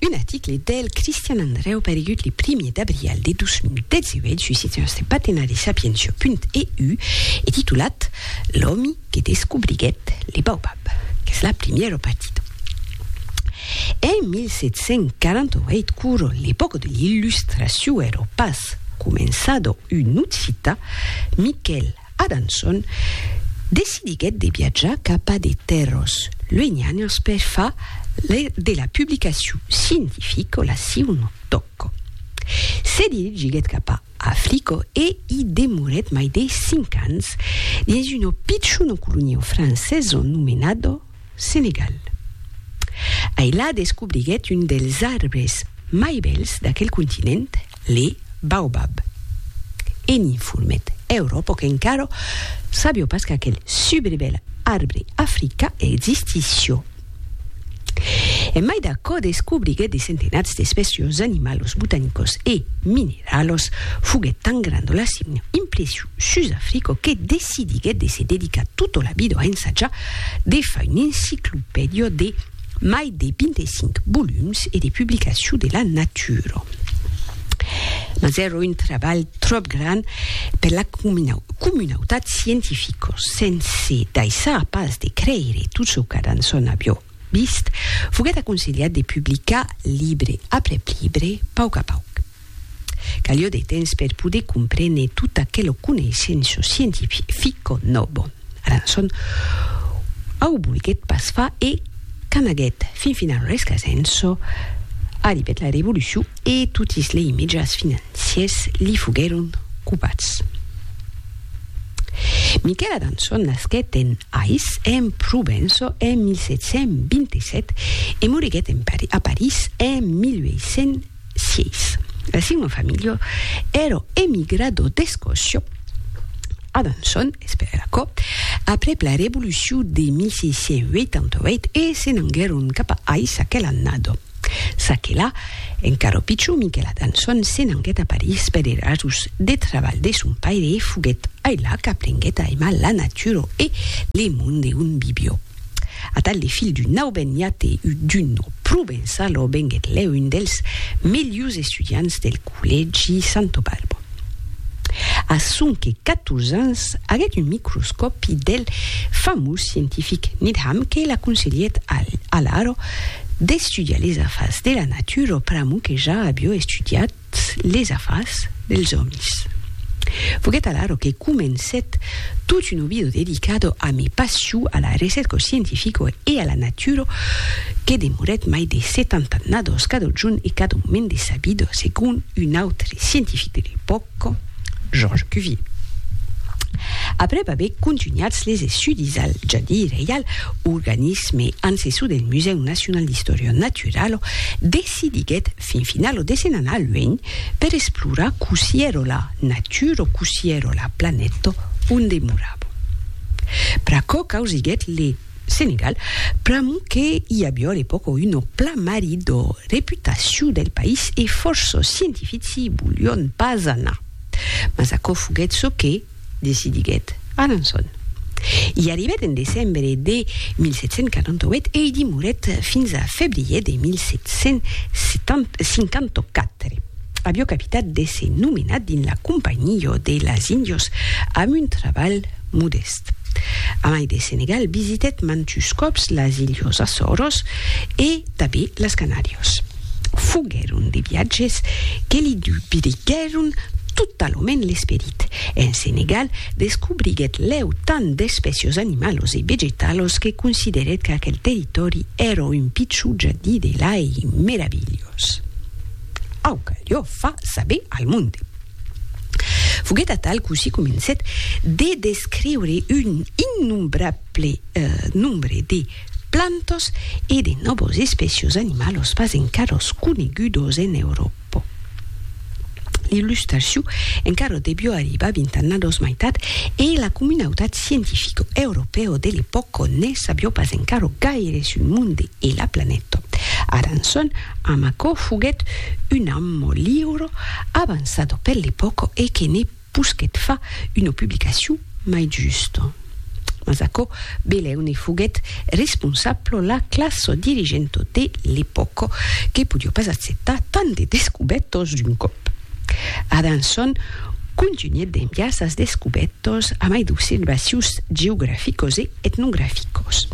Un article del Cristian Andreu paregut le primier d'abrial de 2018 sus eth nòste patenari sapientia.eu e titulat L'òmi que descobriguèt le baobab, qu'es la primièra partida. En 1748 quora l'epòca de l'illustracion èra pas començada un occità, Miquèl Adanson, decidiguèt de viatjar cap a de tèrras luenhanas per far de la publicacion scientifica la siuna tòca. Se dirigiguèt cap a Africa e i demorèt mai de cinc ans dins una pichona colonia francesa nomenada Senegal. Ai la descobriguèt un dels arbres mai bèls d'aquel continent, le baobab. E n'informèt Euròpa qu'encara sabió pas qu'aquel subribèl arbre africà existissió. En mai d'aquò descobriguèt de centenats d'espècios animalos botanicos e mineralos, foguèt tan granda la signa impression sus Africo que decidiguèt de se dedicar tota la vida a ensajar de far un enciclopèdia de mai de 25 volums e de publicacion de la natura. Mas èra un trabalh tròp grand per la comunautat scientifica, sense daissar pas de creire tot çò qu'Adanson aviá vist, foguèt aconselhat de publicar libre aprèp libre, pauc a pauc. Calió de temps per poder comprene tot aquelo coneissenço scientifico nobo. Arançon au volguet pas far e qu'anaguet fin final rescasenço, arribet la revolucion e totis lei mejas financiers li foguèron copats. Miquel Arançon nasquet en Ais, en Provenço, en 1727 e moriguet en París en 1800. Sièis. El signum familio èro emigrado d'Escòcia a Besançon, Esperacò, aprèp la Revolucion de 1688 e se n'anguèron cap a Ais aquela annada. Çaquelà, encara pichon, Miquel Adançon se n'anguèt a París per er ajust deth trabalh de son paire e foguèt ailà qu'aprenguèt a aimar la natura e le monde on vivió. Atal le filh d'un auben iate u d'un o provençalo venguet lèu un dels melhus estudiants del collègi Santo Balbo. A sonque 14 ans aguet un microscòpi del famós scientific Needham que l'aconselhèt alaro d'estudiar les afars de la natura pr'amor que ja avió estudiat totes les afars dels òmis. Foguèt alara que comencèt tot un ovido dedicado a mi passion a la recerca scientifica e a la natura que demorèt mai de setanta annadas cada jorn e cada moment de sa vida, segon un autre scientific de l'epòca, Georges Cuvier. Aprèp aver contunhats les estudis al Jardí Reial, organisme ancessor del Musèu Nacional d'Istòria Naturala, decidiguèt fin finau lo desen anar luenh per esplorar cossí ero la natur o cossí ero la planèto on demorabo. Pr'aquò causiguèt le Senegal, pr'amor que i avió a l'epòca uno plamari d'o reputaciu del país e fòrço scientifici i volión pas anar. Mas aquò foguèt çò que. decidiguèt Alençon. I arribèt en decembre de 1748 e i dimorèt fins a febrier de 1754. Avió capitat de se nomenar dins la Companhió de las Índios amb un trabalh modèst. Amai de Senegal, visitèt mantus còps las Ilhos Açòros e tanben las Canàrios. Foguèron de viatges que li dubriguèron totalament l'esperit. En Senegal, descobriguèt lèu tant d'espècios animalos e vegetalos que considerèt qu'aquel territòri èra un pichon jardí de lai meravilhós. Aucalió far saber al monde. Foguèt atal cossí comencèt de descriure un innombrable ple nombre de plantas e de nòvas espècias animalas pas encaras conegudas en Euròpa. L'illustracion encara deviá arribar vint annadas maitat e la comunautat scientifica europèa de l'epòca ne sabiá pas encara gaire sul monde e la planeta. Aranson, amb aquò, foguèt un amo liure, avançada per l'epòca e que ne Pus que't fa una publicacion mai justa. Mas aquò belèu ne foguèt responsabla la classa dirigenta de l'epòca, que podiá pas acceptar tant de descubètas d'un còp. Adanson contunhèt d'enviar sas descubètas a mai d'observacions geograficas e etnograficas,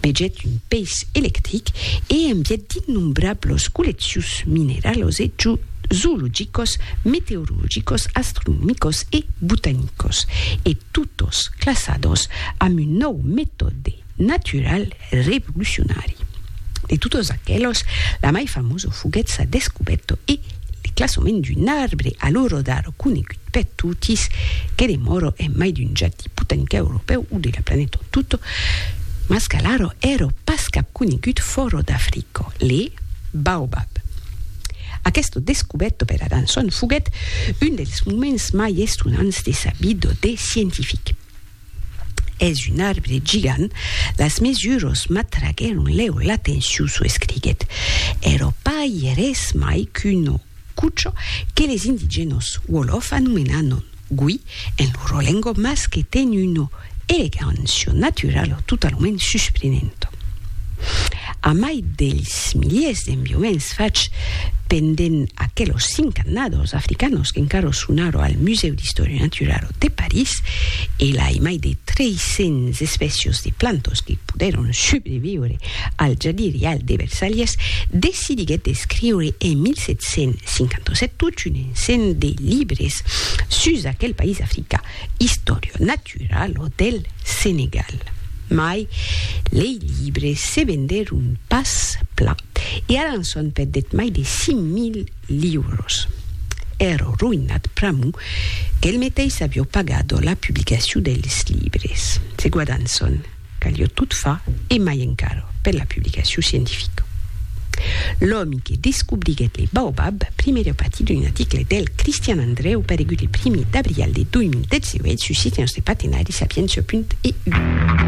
vegèt un peis electric e envièt d'innombrablas colleccions mineralas e zoologicos, meteorologicos, astronomicos e botanicos, e totos classados amb un nòu metòde natural revolucionari. De totos aquelos, la mai famoso foguèt sa descubèto e le classament d'un arbre a lo rodar conegut per totis, que demòro en mai d'un jardí botanic europèu o de la planeta en tot, mas qu'alara èra pas cap conegut fòra d'Africa, le baobab. Aqueste descubèto per Adanson foguèt un dels moments mai estonants de sa vida de scientific. Es un arbre gigant, las mesuras m'atraguèron lèu l'atencion, çò escriguèt. Èra pas res mai qu'una cucha que les indigènas Wolof anomenanon Gui, en lo rolengo mas que ten una elegancia naturala totalament susprenenta. Amai dels miliers d'enviaments fachs pendent aquelos cinc annadas africanos qu'encara son ara al Musèu d'Istòria Naturala de París, e lai mai de 300 espècias de plantas que podèron subreviure al jardin reial de Versalhes, decidiguèt d'escriure en 1757 tota una Sent de libres sus aquel país africà, istòria natural o del Senegal. Mai lei libres se vendèron pas plan e ara en son perdèt mai de 5.000 liuros. Èrò roïnat pr'amor qu'el meteis avió pagat la publicacion dels libres. Se guardan son. Calió tot far, e mai encara, per la publicacion scientifica. L'òmi que descobriguèt le baobab primièr a patir d'un article del Cristian Andrèu paregut le primièr d'abrial de 2018 sus Sitiens de Patenari, Sapientia punt EU.